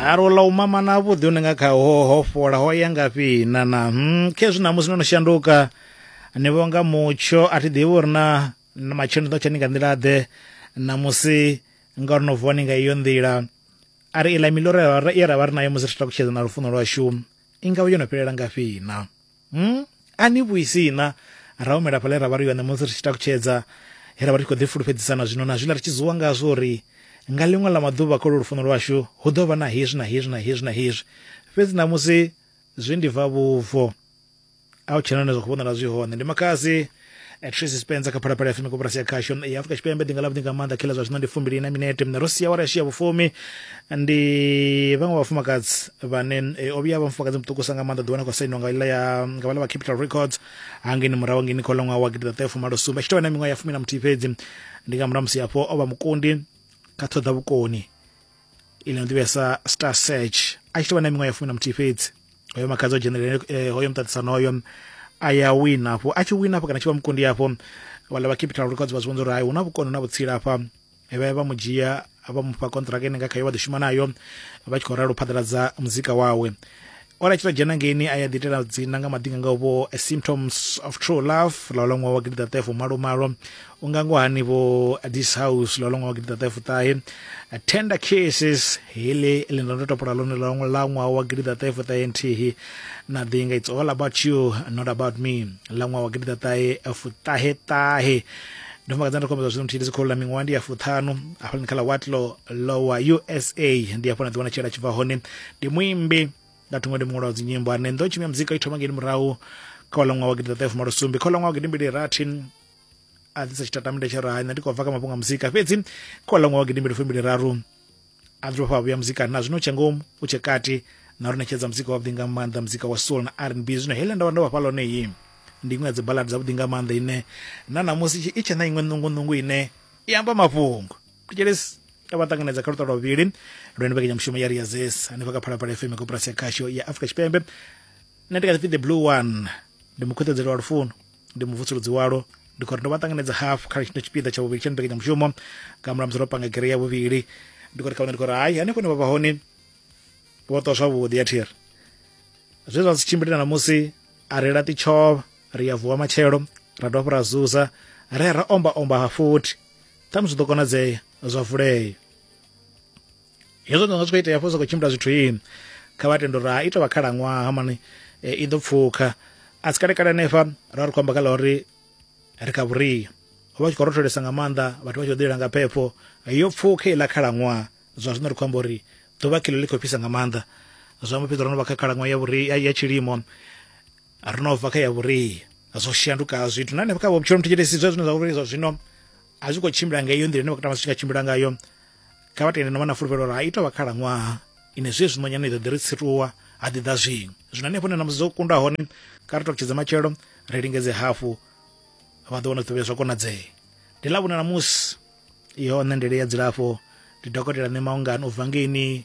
halwo ḽa u mama na vhuḓi une nga kha ho ho fola ho ya ngafhi na na hmm, khezwi ṋamusi no no shanduka ni vhonga mutsho a thi ḓivhi uri na matshelo ni ḓo tsha ni nga nḓila ḓe ṋamusi nga uri no vuwa ni nga iyo nḓila a ri iḽa miḽoro ye ra vha ri nayo musi ri tshi takutshedza na lufuno lwashu i nga vha yo no fhelela ngafhi na Hmm? A ni vhuisi na ra humela fhaḽa ra vha ri yone musi ri tshi takutshedza he ra vha ri tshi khou ḓifhulufhedzisana zwino na zwiḽa ri tshi zuwa ngazwo uri nga ḽiṅwe ḽa maḓuvha kha lwo lufuno lwashu hu ḓo vha na hezwi na hezwi na hezwi na hezwi fhedzi ṋamusi zwi ndi bva vhubvo a hu tshena hone zwa khou vhonala zwi hone ndi makhadzi Eh, tracy spencer kha phalaphala fm koporasi ya khasho ya afurika tshipembe ḓinga ḽavhuḓi nga maanḓa khela zwa zwino ndi fumbili na minete ro sia wara yashiya vhufumi ndi vhaṅwe vhafumakadzi vhane eh, o vhuya vha mufumakadzi muṱukusa nga maanḓa ḓiwana khou sainiwa nga iḽa ya nga vhala vha capital records hangeni murahu ngeni kha uḽa ṅwaha wa gidiḓaṱahefumalosumbe a tshi tovha na miṅwaha ya fumi na muthihi fhedzi ndi nga murahu musi hafho o vha mukundi kha ṱhoḓa vhukoni ine ya ḓivhesa star search a tshi tou vha na miṅwaha ya fumi na muthihi fhedzi hoyo makhadzi o dzhenelela eh, hoyo muṱaṱisano hoyo a ya wina afho a tshi wina afho kana tshi vha mukundi afho vhala vha capital records vha zwi vhonza uri hai hu na vhukono na vhutsila afha vha ya vha mu dzhia vha mufha kontraka ine nga khayo vha ḓo shuma nayo vha tshi khou ralo phaḓaladza muzika wawe o ḽa tshita dzhena ngeini a ya ḓitela dzina nga maḓinga nga vho eh, symptoms of true love ḽa ḽa ṅwaha wa gidi ṱaṱefo malo malo u nga ngo hani vho eh, this house ḽa ḽa ṅwaha wa gidi ṱaṱefo ṱahe eh, tender kisses heḽi ḽi nda ndo topola ḽone ḽa ḽa ṅwaha wa gidi ṱaṱefo ṱahe nthihi na ḓinga it's all about you not about me ḽa ṅwaha wa gidi ṱaṱahe fuṱahe ṱahe ndo fumakadza ndo kombedza zwino nthihi ndi dzikholo ḽa miṅwaha ndi ya fuṱhanu hafhaḽani kha ḽa watlo lowa usa ndi hafho na ḓiwana tshela tshi bva hone ndi muimbi nga thungo ndi muṅwe wa dzinyimbo ane ndo tshimya muzika i thoma ngeni murahu kha wa ṅwaha wa gidiḓaṱahefumalosumbi kha wa ṅwaha wa gidimbili rathi a ḓisa tshitatamende tsha raha nṋe ndi khou bva kha mafhungo a muzika fhedzi kha wa ṅwaha wa gidimbili fumbili raru a dzuba fha vhuya muzika na zwino tshe ngomu u tshe kati na ri ṋetshedza muzika wavhuḓi nga maanḓa muzika wa soul na r n b zwino heḽe nda vha ndo vhafha lone iyi ndi iṅwe ya dzibaladi dzavhuḓi nga maanḓa ine na namusi i tshe na iṅwe ṋungunungu ine i amba mafhungo thetshelesi ya vha ṱanganedza kha luṱa lwa vhuvhili lwendo mbekanyamushumo ya riazes hanefha kha phalaphala fm koporasi ya khasho ya afrika tshipembe nṋe ndi kha ḓipfi the blue one ndi mukhuṱedzeli wa lufuno ndi muvutsuludzi walo ndi khou ri ndo vha ṱanganedza hafhu kha tshino tshipiḓa tsha vhuvhili tsha mbekanyamushumo nga mulamusi ro panga gere ya vhuvhili ndi khou ri kha vhone ndi khou ri hai hanefho ne vha vha hone vho ṱwa zwavhuḓi ya thiri zwe zwa si tshimbile na musi a ri laṱi tshovha ri ya vuwa matshelo ra dovha hafhu ra zuza ra ya ra omba omba ha futhi ṱhamusi zwi ḓo konadzea zwa vulea hezwo nga zwi khou itea fo sa khou tshimbila zwithu ini kha vha tendo ra ita vha khalaṅwaha mani e, i ḓo pfukha a si kalekale hanefha ra ri khou amba kha ḽa uri ri kha vhuria ho vha tshi khou rotholesa nga maanḓa vhathu vha tshi khou ḓilela nga phepho yo pfukha iḽa khalaṅwaha zwa zwino ri khou amba uri ḓuvha khilo ḽi khou fhisa nga maanḓa zwa mbo fhedza ro no vha kha khalaṅwaha ya vhuria ya tshilimo ri no bva kha ya vhuria zwo shanduka ha zwithu na hanefha kha vhutshilo muthu tshitesi zwa zwine zwa vhuri zwa zwino a zwi khou tshimbila nga iyo nḓila ine vha katama zwi tshi nga tshimbila ngayo kha vha tende no vha na fulufhelo uri ha ito vha khalaṅwaha ine zwe zwino nyana i ḓo ḓi ri tsituwa ha ḓi ḓa zwiṅwe zwino hanefho ne na musi zwo kunda hone kha ri tokutshedza matshelo ri lingedze hafhu vha ḓo wana ṱuvhe zwa konadzea ndi ḽa vhuna na musi iyo nṋe ndele ya dzilafho ndi dokotela nṋe maungani u bva ngeini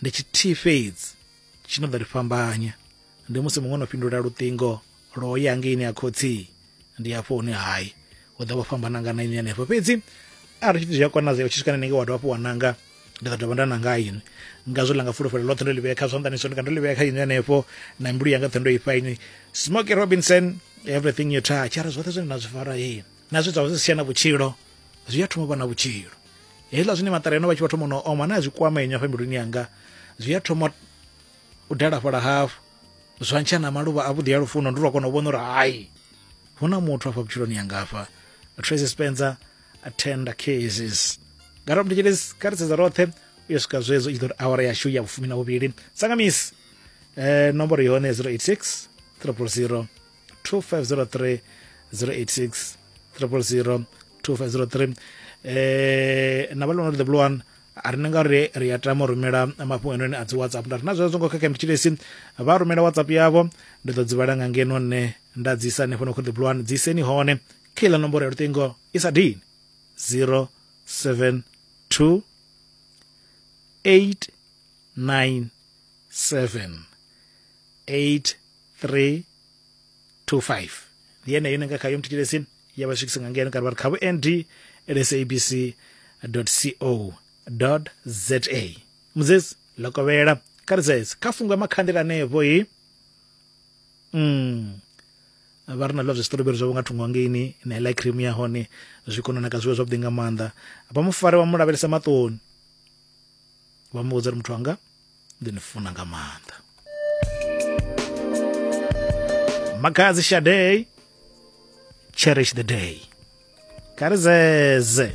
ndi tshithihi fhedzi tshi no ḓo ri fhambanya ndi musi muṅwe no fhindula luṱingo lwo ya ngeini ya khotsi ndi hafho hune hai u ḓo vha fhambana nga naini henefho fhedzi arali tshithu zwi a konadzea u tshi swika nenenge wa dovha hafhu wa nanga ndi ḓo dovha nda nanga ini ngazwo ḽa nga fulufhelo ḽoṱhe ndo ḽi vhea kha zwanḓani so ndi nga ndo ḽi vhea kha ini henefho na mbilu yanga ṱhe ndo i fha ini smoky robinson everything you touch ara zwoṱhe zwine na zwi fara ee na zwe zwa zwi sia na vhutshilo zwi a thoma vha na vhutshilo hezwiḽa zwine maṱareno vha tshi vha thoma no oma na zwi kwama inywa fhembiluni yanga zwi a thoma u dalafhala hafu zwa ntsha na maluvha a vhuḓi ya lufuno ndi lwa kona u vhona uri hayi hu na muthu afha vhutshiloni yanga afha tracy spencer attenda cases gara mnditshelezi kha ri sedza roṱhe u yo swika zwedzo i ḓo ri awara yashu ya vhufumi na vhuvhili sangamisi eh, nomboro yone 086 300 2503 086 000 2503 eh na balona the blue one a ri nga ri ri ya tama rumela mafhungo ene a dzi whatsapp nda rina zwezwo ngo khakha mthilesi vha rumela whatsapp yavho ndi ḓo dzivhala nga ngeno nne nda dzi isa nefho no kho the blue one dzi seni hone khila nomboro ya lutingo i sa dini 072 897 8 3 to 5 ndi yeneyo ine nga khayo mthetshelesini ya vha swikisa nga ngeno kana vha ri kha vhu nd lsabc co za mudzesi ḽo kovhela kha ri dzedze kha fungo ya makhandela anevho i mm vha ri na zwiḽiwa zwa siṱoroberi zwavho nga thungo hangeini na iḽa cream ya hone zwi kona naka zwiḽiwa zwavhuḓi nga maanḓa vha mufare vha mu lavhelesa maṱoni vha mu vhudza uri muthu wanga ndi ni funa nga maanḓa makhadzi shadei cherish the day kha ri zeze